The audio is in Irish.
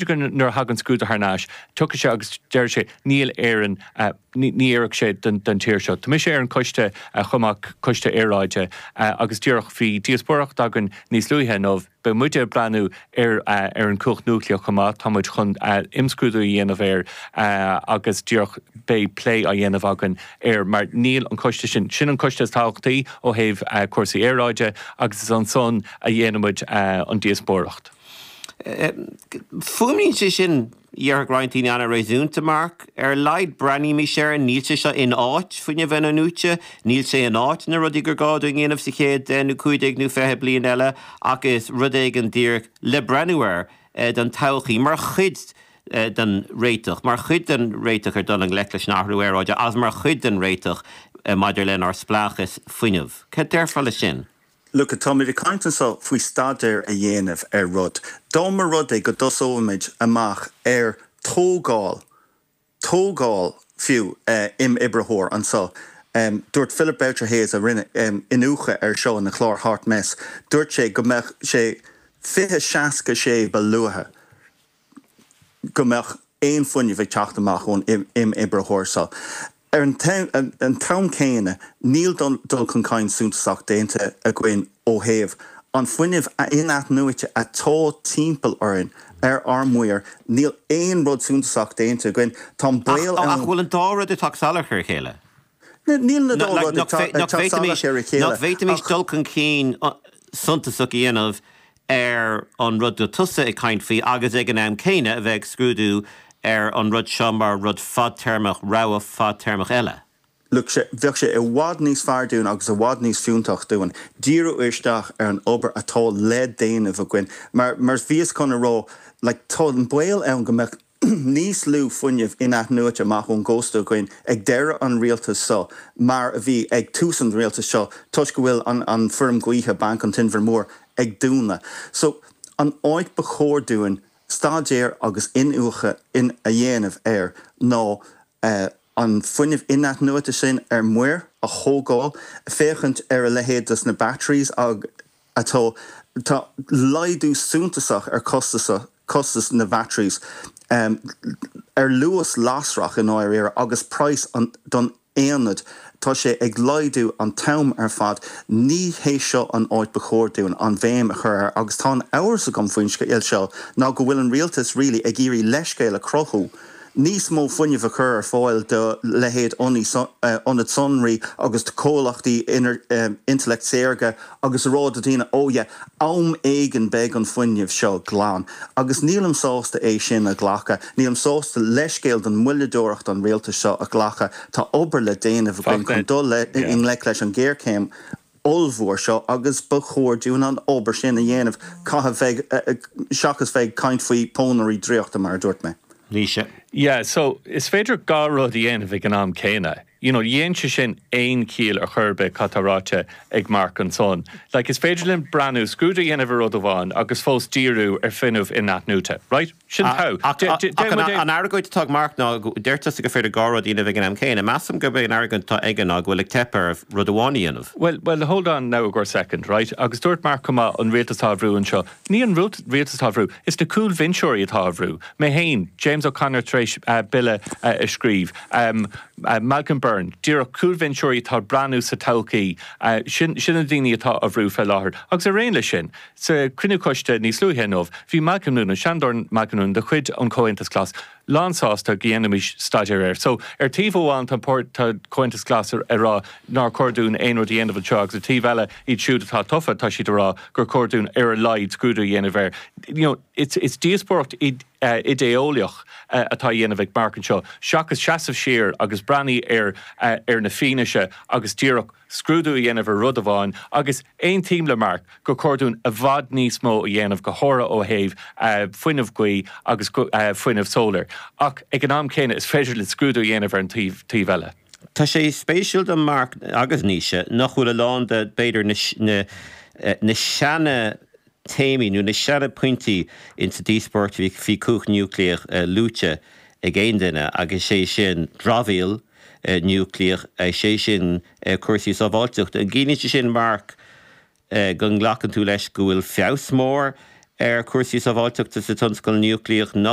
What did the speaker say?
b'fhéidir go nuair a thagann scrúdú thar n-ais, tiocfaidh sé agus déarfaidh sé, níl, in Éirinn ní oirfeadh sé don tír seo. Tá mise ar an gcoiste chomh maith, coiste aeráide, agus díreach bhí díospóireacht againn níos luaithe inniu, beidh muide ag breathnú ar an chumhacht núicléach chomh maith, tá muid chun imscrúdú a dhéanamh air agus díreach beidh plé á dhéanamh againn air mar níl an coiste sin, sin an coiste is tábhachtaí ó thaobh cúrsaí aeráide agus is ansan a dhéanfaidh muid an díospóireacht. Fuaimníonn sé sin, dhéarfadh roinnt daoine, an-réasúnta, Mark. Ar a laghad breathnaímis air, níl sé seo in áit fuinneamh in-athnuaite, níl sé in áit na rudaí gur gá dúinn a dhéanamh sa chéad deich nó cúig déag nó fiche bliain eile, ach is rud éigin díreach le breathnú air don todhchaí, mar chuid den réiteach, mar chuid den réiteach ar dhul i ngleic leis an athrú aeráide agus mar chuid den réiteach maidir lenár spleáchas fuinnimh. Cad déarfá leis sin? Look, táimid ag caint anseo faoi staidéar a dhéanamh ar rud. Dá mba rud é go dtosóimis amach ar tógáil, tógáil fiú, imoibritheoir anseo. Dúirt Philip Boucher Hayes, a rinne iniúchadh air seo ina chlár Hot Mess, dúirt sé go mbeadh sé fiche, seasca sé ba luaithe. go mbeadh aon fuinneamh ag teacht amach ón imoibritheoir seo. Ar an t-am céanna, níl dul chun cinn suntasach déanta againn ó thaobh an fuinnimh in-athnuaite atá timpeall orainn ar ár muir, níl aon rud suntasach déanta againn. Tá an baol ann. Ach an bhfuil an dá rud ag teacht salach ar a chéile? Níl na dá rud ag teacht salach ar a chéile. Nach bhféadfaimis dul chun cinn suntasach a dhéanamh ar an rud go bhfuil tusa ag caint faoi agus ag an am céanna a bheith ag scrúdú ar an rud seo mar rud fadtéarmach, rogha fadtéarmach eile? Look, bheadh sé i bhfad níos fearr dúinn agus i bhfad níos fiúntach dúinn díriú isteach ar an obair atá le déanamh againn mar, mar a bhíos chun a rá, like tá an baol ann go mbeadh níos lú fuinnimh in-athnuaite amach ón gcósta againn ag deireadh an rialtais seo mar a bhí ag tús an rialtais seo toisc go bhfuil an fheirm ghaoithe Banc an Inbhir Mhóir ag dúnadh. So an áit ba chóir dúinn staidéar agus iniúchadh a dhéanamh air ná an fuinneamh in-athnuaite sin ar muir a thógáil, féachaint ar a leithéid de na batteries agus. Tá laghdú suntasach ar chostas na batteries, ar luas lasrach i ndáiríre, agus praghas don aonad, tá sé ag laghdú an t-am ar fad. Ní hé seo an áit ba chóir dúinn an bhéim a chur air agus tá an t-amhras agam faoin scéal seo ná go bhfuil an rialtas really ag iarraidh leithscéal a chruthú, níos mó fuinnimh a chur ar fáil do leithéid ionaid sonraí agus do chomhlachtaí intleacht saorga agus a rá do dhaoine, ó yeah, am éigin beidh an fuinneamh seo glan. Agus nílim sásta é sin a ghlacadh. Nílim sásta leithscéal do mhoilleadóireacht an rialtais seo a ghlacadh. Tá obair le déanamh againn chun dul i ngleic leis an ghéarchéim. ollmhór seo agus ba chóir dúinn an obair sin a dhéanamh seachas bheith ag caint faoi pónairí draíochta, mar a dúirt mé. Naoise. Yeah, so, is féidir dhá rud a dhéanamh ag an am céanna. You know, ní dhéanann sé sin aon chiall ar chor ar bith cad tá ráite ag Mark ansan. Like, is féidir linn breathnú, scrúdú a dhéanamh ar rud amháin agus fós díriú ar fuinneamh inathnuaite. Right? Sin taobh. An argóint atá ag Mark ná, deir tusa gur féidir dhá rud a dhéanamh ag an am céanna. Measaim gurb é an argóint atá aige ná go bhfuil ag teip ar rud amháin a dhéanamh. Bhuel, bhuel, hold on now a second, right? Agus dúirt Mark chomh maith, an rialtas atá á bhrú anseo, ní an rialtas atá á bhrú, is na cúlbhinseoirí atá á bhrú. Mé féin, James O'Connor tar éis bille a scríobh, Malcolm Byrne, díreach cúlbhinseoirí atá ag breathnú sa todhchaí, sin na daoine atá á bhrú fé láthair. Agus araon leis sin, Sa chruinniú coiste níos luaithe inniu, bhí Malcolm Noonan, Seanadóir Malcolm Noonan de chuid an Chomhaontais Ghlais, lánsásta go ndéanfaimis staidéar air. So, ar taobh amháin tá an páirt, tá Comhaontas Glas ag rá nár chóir dúinn aon rud a dhéanamh anseo agus ar taobh eile, iad siúd atá tofa, tá siad ag rá gur chóir dúinn ar a laghad scrúdú a dhéanamh air. You know, it's, it's díospóireacht idé-eolaíoch atá á dhéanamh ag Mark anseo seachas seasamh siar agus breathnaigh ar, ar an bhfianaise agus díreach. scrúdú a dhéanamh ar rud amháin, agus aontaím le Mark gur chóir dúinn i bhfad níos mó a dhéanamh, go háirithe ó thaobh fuinneamh gaoithe agus fuinneamh solar, ach ag an am céanna is féidir linn scrúdú a dhéanamh ar an taobh eile. Tá sé spéisiúil though, Mark, agus Naoise, nach bhfuil a lán de, b'fhéidir, na seana, téamaí nó na seana pointí insa díospóireacht faoi chumhacht núicléach luaite ag aon duine agus é sin dramhaíl núicléach, is é sin cúrsaí sábháilteachta. An gciallaíonn sé sin, Mark, go nglacann tú leis go bhfuil feabhas mór ar chúrsaí sábháilteachta sa tionscal núicléach?